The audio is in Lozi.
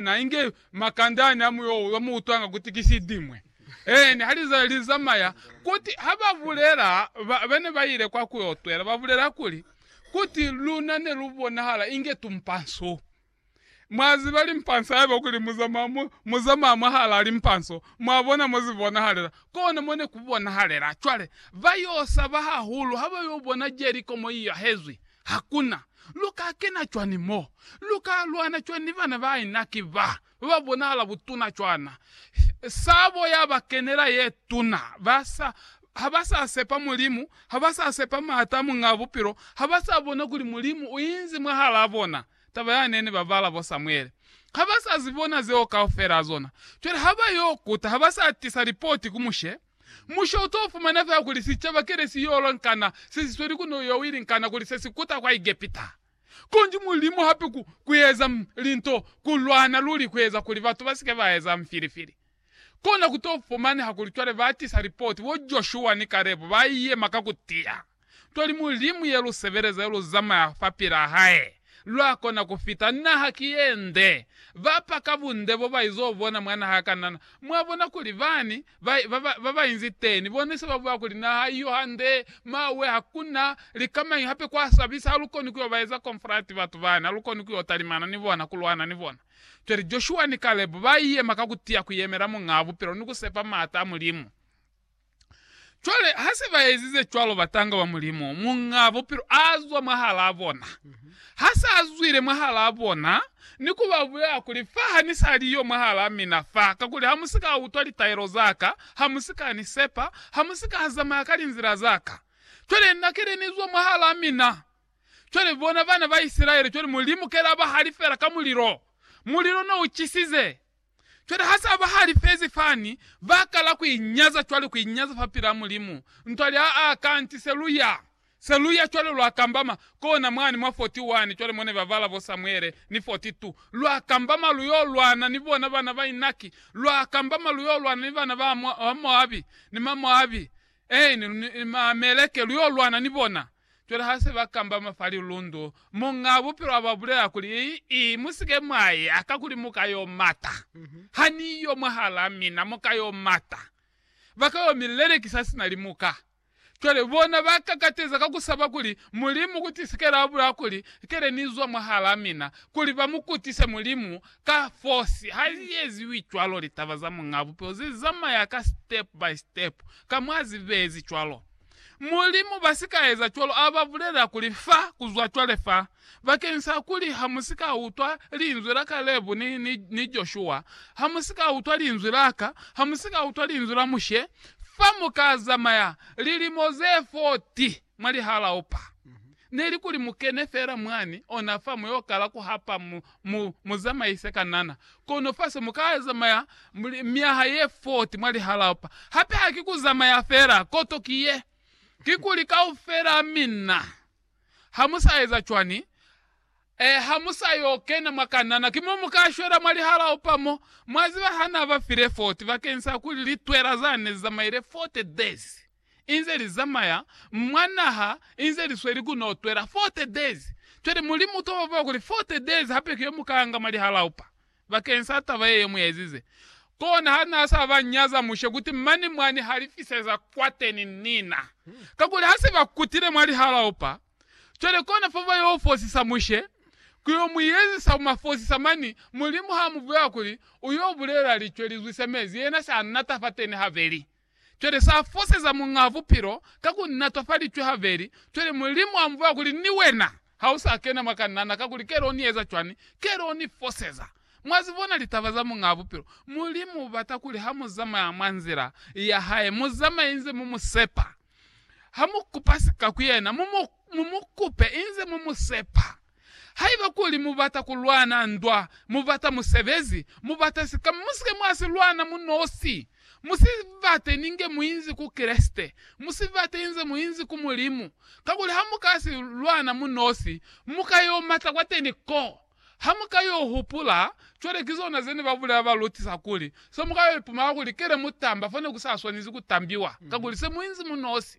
Na inge makande ani a muyoo yo mu utwanga kuti ki sidimwe. Eeni, ha lizazi li zamaya, kuti ha ba bulela, ba, ba ne ba ile kwa ku yo twela, ba bulela kuli, kuti luna ne lu bonahala inge tumpa nso. Mwa ziba limpa nso, haiba kuli mu zamaya, mu, mu zamaya mwahalaa limpa nso, mwa bona mo zi bonahalela. Kona mo ne ku bonahalela. Cwale, ba yo saba hahulu ha ba yo bona Jeriko mo i yahezwi. Hakuna. Lu ka kena cwani mo? Lu ka lwana cwani ni bana ba inaki ba, ba ba bonahala butuna cwana? Sabo ya ba kenela ye tuna. Ba sa, ha ba sa sepa Mulimu, ha ba sa sepa maata a Muñaa Bupilo, ha ba sa bona kuli Mulimu u inzi mwahalaa bona, taba ya ne ni ba bala bo Samuele. Ha ba sa zi bona zeo kaufela zona. Cwale ha ba yo kuta, ha ba sa tisa lipoti ku Mushe. Musho u t'o fumana fela kuli sicaba kile si y'o lwa nkana se si sweli ku n'o yo wili nkana kuli se si kuta kwa Egepita. Konji Mulimu hape ku, ku eza linto ku lwana luli ku eza kuli batu ba si ke ba eza mfilifili. Kona ku t'o fumaneha kuli cwale ba tisa lipoti, bo Joshua ni Kalebu ba yema ka ku tiya. Toli Mulimu ye lu sebeleza yo lu zamaya fapilaa hae, lwa kona ku fita. Naha ki ye nde. Ba pa ka bunde bo ba izo bona mwa naha ya Kanana, mwa bona kuli bani ba, ba, ba, ba ba inzi teni, bone se ba bulela kuli, Naha iyo hande, mawe, hakuna likamañi hape kwa sabisa, ha lu koni ku yo ba eza konfrati batu bani, ha lu koni ku yo talimana ni bona, ku lwana ni bona. Cwale Joshua ni Kalebe ba yema ka ku tiya ku yemela Muñaa Bupilo ni ku sepa maata a Mulimu. Cwale, ha se ba ezize cwalo, batanga ba Mulimu, Muñaa Bupilo a zwa mwahalaa bona. Ha sa zwile mwahalaa bona, ni ku ba bulela kuli, Fa ha ni sa li yo mwahalaa mina fa, kakuli ha mu si ka utwa litaelo za ka, ha mu si ka ni sepa, ha mu si ka zamaya ka linzila za ka. Cwale Na kile ni zwa mwahalaa mina. Cwale, bona, bana ba Isilaele, cwale Mulimu kile a ba halifela ka mulilo. Mulilo ne u cisize. Cwale ha sa ba halifezi fani, ba kala ku inyaza cwale, ku inyaza fa pila Mulimu. Ntwa lya, a, kanti se lu ya, se lu ya cwale, lwa kambama kona mwani mwa 41, cwale mo ne ba bala bo Samuele, ni 42. Lwa kambama lu yo lwana ni bona bana ba Inaki, lwa kambama lu yo lwana ni bana ba Moabi, ni Mamoabi, eeni, ni Maameleke, lu yo lwana ni bona. Cwale ha se ba kambama fa lilundu, muñaa bupilo a ba bulela kuli, I, mu si ke mwa i aka kuli mu ka y'o mata. Ha ni yo mwahalaa mina, mu ka y'o mata. Ba ka y'o mi lelekisa sina limuka. Cwale bona ba kakateza ka ku saba kuli, Mulimu ku tisikela a bulaa kuli, Kele ni zwa mwahalaa mina, kuli ba mu kutise Mulimu ka fosi. Ha li eziwi cwalo, litaba za muñaa bupilo ze zamaya ka step by step, ka mwa zibezi cwalo. Mulimu basikaeza cwalo aba bulela kuli, Fa kuzwa cwale fa, bakeni sa kuli hamusika utwa linzwi la Kalebu ni, ni, ni Joshua, hamusika utwa linzwi laka, hamusika utwa linzwi la Mushe, fa muka zamaya lilimo ze 40 mwa lihalaupa. Neli kuli mu kene fela mwani ona fa mu yo kala ku hapa mu, mu, mu zamaise ka nana. Kono fa se mu ka zamaya myaha ye 40 mwa lihalao pa. Hape ha ki ku zamaya fela. Koto ki ye. Kikuli kaufela a minna, ha mu sa eza cwani, eh, ha mu sa yo kena mwa ka nana, ki mo mu ka shwela mwa lihalao pa mo. Mwa ziba, Ha Na ba file 40 bakeñisa kuli litwela zane zi zamaile 40 days. inze li zamaya mwa naha inze li sweli ku no twela 40 days. Cwale Mulimu uka ba bula kuli 40 days hape ki yo mu ka nga mwa lihalaupa bakeng sa taba ye yo mu ezize. Kona ha na sa ba nyaza Mushe kuti mane mwa ni halifiseza kwateni nina. Kakuli ha se ba kutile mwa lihalaupa, cwale kona fo ba yo fosisa Mushe, ku yo mu ezisa ku ma fosisa mani. Mulimu ha mu bulela kuli u yo bulela licwe li zwise mezi, yena sa nata fateni habeli. Cwale sa foseza Muñaa Bupilo ka ku natwa fa licwe habeli. Cwale Mulimu a mbulela kuli, Ni wena ha u sa kena mwa kanana, kakuli ke lo ni eza cwani? Ke lo ni foseza. Mwa zi bona litaba za Muñaa Bupilo? Mulimu u bata kuli ha mu zamaya mwa nzila ya hae, mu zamaye inze mu mu sepa. Ha mu kupa sika ku yena, mu mu kupe inze mu mu sepa. Haiba kuli mubata kulwana ndwa, mubata musebezi, mubata sika, musike mwasilwana munosi. Musibate ninge muinzi ku Kreste. Musibate inze muinzi ku Mulimu. Kakuli hamuka si lwana munosi, muka yo mata kwateni ko. Hamuka yo hupula, cwale kizona zene babulela balutisa kuli, se muka yo ipumala kuli kele mutamba fo nekusaswanezi kutambiwa, kakuli se muinzi munosi.